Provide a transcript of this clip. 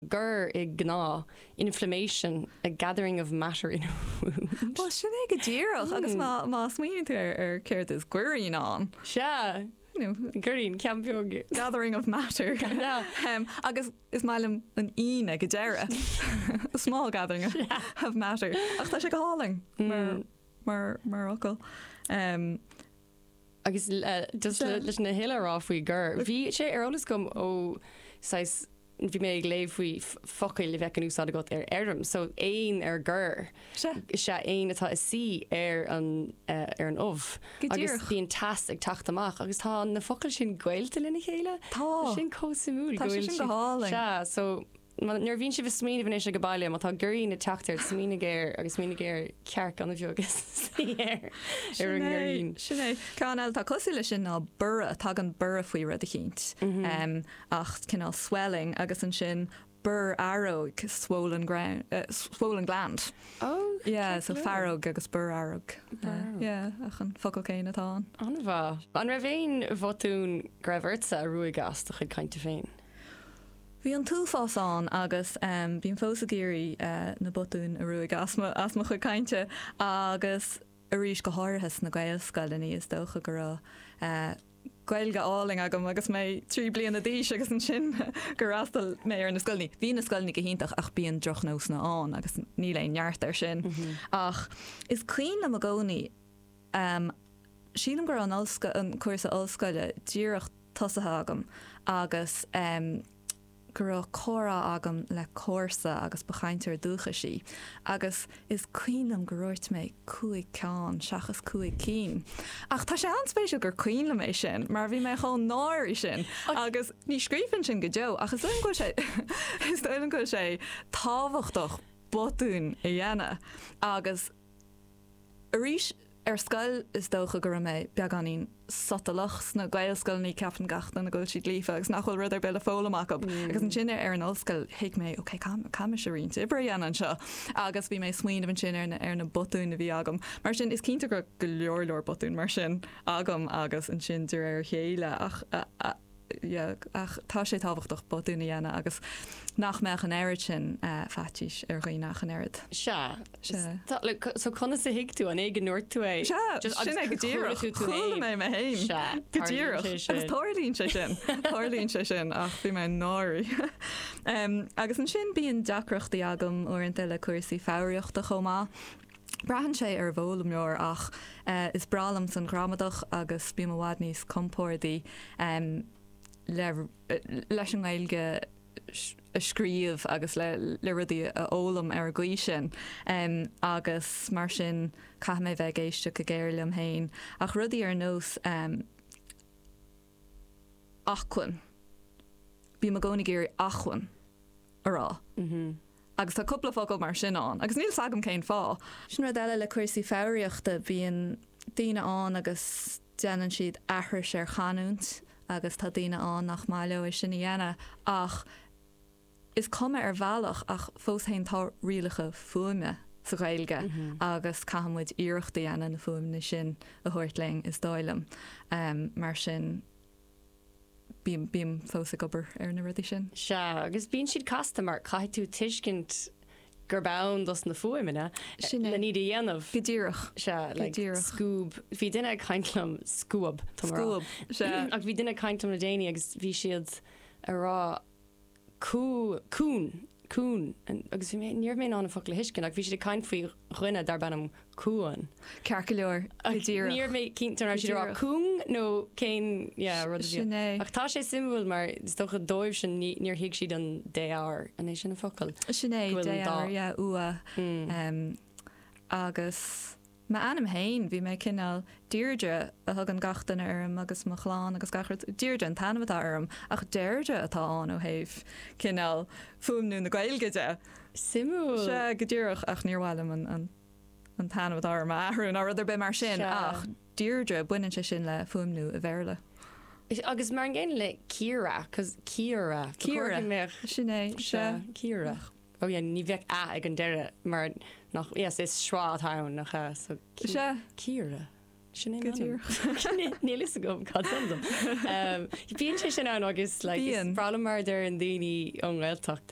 gor, i ngnáth, inflammation, a gathering of matter in a wound. Bhuel, sin é go díreach, agus má smaoiníonn tú ar céard is goirín ann. Sea, goirín, ceann beag. Gathering of matter. Agus is maith liom an ín ag an deireadh, a small gathering of matter. Ach tá sé go hálainn mar fhocal. Agus just leis na huile a rá faoi gor bhí sé ar eolas agam ó saghas bhí mé ag léamh faoi focail a bheadh in úsáid agat ar fheirm so éan ar gor is ea éan atá ag suí ar an ubh agus bíonn teas ag teacht amach agus tá na focail sin gaolta lena chéile. Tá sin chomh suimiúil go bhfuil. Tá sé sin go hálainn. Sea so. Nuair a bhíonn sibh ag smaoineamh anois ag an baile má tá goirín ag teacht air smaoinigh ar agus smaoinigh ar cearc gan a bheag ag suí air ar an ngoirín. Sin é. Ceann eile atá cosúil leis sin ná borradh. Tagann borradh faoi rud eicínt. Ach cineál swelling agus ansin borrfhaireog, swollen ground, swollen gland. Oh, ceart go leor. Yeah, so faireog agus borrfhaireog. Borradh. Yeah, ach an focal céanna atá ann. An-mhaith. An raibh aon bhotún go raibh ortsa a ruaig as do chuid cainte féin? Bhí an t-uafás ann agus bím fós ag iarraidh na botúin a ruaigeadh as mo chuid cainte agus arís go háirithe sna Gaelscoileanna. Is dócha go raibh Gaeilge álainn agam agus mé trí bliana d'aois agus ansin gur fhreastail mé ar na scoileanna. Bhí na scoileanna go hiontach ach bíonn drochnósanna ann agus níl aon neart air sin. Ach is cuimhin liom i gcónaí. Am, Sílim go raibh an ollscoil, an cúrsa ollscoile díreach tosaithe agam agus em go raibh comhrá agam le comharsa agus ba chainteoir dúchais í agus is cuimhin liom gur dhúirt mé cúig ceann seachas cúig cinn ach tá sé an-spéisiúil gur cuimhin liom é sin mar bhí mé chomh náirithe sin agus ní scríobhfainn sin go deo ach is dóigh liom go bhfuil sé, is dóigh liom go bhfuil sé tábhachtach botúin a dhéanamh agus. Arís, ar scoil is dócha go raibh mé beagáinín sotalach. Sna Gaelscoileanna ceapann gach duine go bhfuil siad líofa agus nach bhfuil rud ar bith le foghlaim acu. Agus ansin ar an ollscoil thuig mé 'ok, caithfidh mise roinnt oibre a dhéanamh anseo'. Agus bhí mé ag smaoineamh ansin ar na botúin a bhí agam. Mar sin, is cinnte go raibh go leor leor botúin mar sin agam agus ansin de réir a chéile ach. yeah. Ach tá sé tábhachtach botúin a dhéanamh agus nach mbeadh an oiread sin faitís ar dhaoine ach an oiread. Sea. Sea. Tá, like, so conas a thuig tú? An é go ndúirt tú é? Sea. Just, agus. Sin é go díreach. Chuala tú tú féin. Chuala mé mé féin. Sea. Go díreach. Tarlaíonn sé sin. Agus tarlaíonn sé sin. Tarlaíonn sé sin ach bhí mé náirithe. Agus ansin bíonn deacrachtaí agam uaireanta le cúrsaí foghraíochta chomh maith. Braitheann sé ar an bhfoghlaimeoir ach is breá liom féin an ghramadach agus bím i bhfad níos compórdaí leis an nGaeilge a scríobh agus le rudaí a fhoghlaim ar an gcaoi sin agus mar sin caithfidh mé bheith ag éisteacht go géar liom fhéin ach rudaí ar nós acmhuinn. Bím i gcónaí ag iarraidh acmhainn a rá agus tá cúpla focal mar sin ann agus níl a fhios agam cén fáth. Sin rud eile le cúrsaí foghraíochta, bíonn daoine ann agus déanann siad aithris ar chanúint agus tá daoine ann nach maith leo é sin a dhéanamh ach, Is cuma ar bhealach ach fós féin tá rialacha fuaime sa Ghaeilge agus caithfidh muid iarracht a dhéanamh na fuaimeanna sin a thabhairt linn is dóigh liom. Mar sin bím, bím fós ag obair ar na rudaí sin. Sea, agus bíonn siad casta mar caithfidh tú tuiscint gurb ann dos na fuaimeanna lena iad a dhéanamh. Sin é. Go díreach. Sea, like scuab, bhí duine ag caint liom, scuab, tá mé a rá. Scuab, sea. Ach bhí duine ag caint liom le déanaí agus bhí siad a rá. Cún, Cuan, agus bhí mé, ní raibh mé in ann an focal a thuiscint ach bhí siad ag caint faoi dhuine darb ainm Cuan. Ceart go leor, go díreach. Ní raibh mé cinnte an raibh siad ag rá cúng nó cén, yeah, rud a bhí ann. Sin é. Ach tá sé suimiúil mar is dócha dóibhsean níor thuig siad an défhoghar, an é sin an focal? Sin é, défhoghar, yeah, ua, agus. M'ainm féin, bhí mé cineál, Deirdre a thugann gach duine orm agus mo chlann agus gach rud, Deirdre an t-ainm atá orm ach Deirdre atá ann ó thaobh, cineál, fuaimniú na Gaeilge de. Suimiúil. Sea, go díreach, ach níor mhaith liom an, an, an t-ainm atá orm a athrú ná rud ar bith mar sin Sea. ach Deirdre, baineann sé sin le fuaimniú an Bhéarla. Agus mar an gcéanna le Ciara, 'cause, Ciara, ba chóir Ciara, go mbeadh, sin é, sea, sea, Ciara. Ó yeah, ní bheadh a ag an deireadh mar nach, yes, is schwa atá ann, nach ea? So Sea. Ciara. Sin é Go m'ainm. díreach. Níl fhios agam cad tá ann dom. Bíonn sé sin ann agus like is Bíonn. breá liom mar a deir na daoine ón nGaeltacht,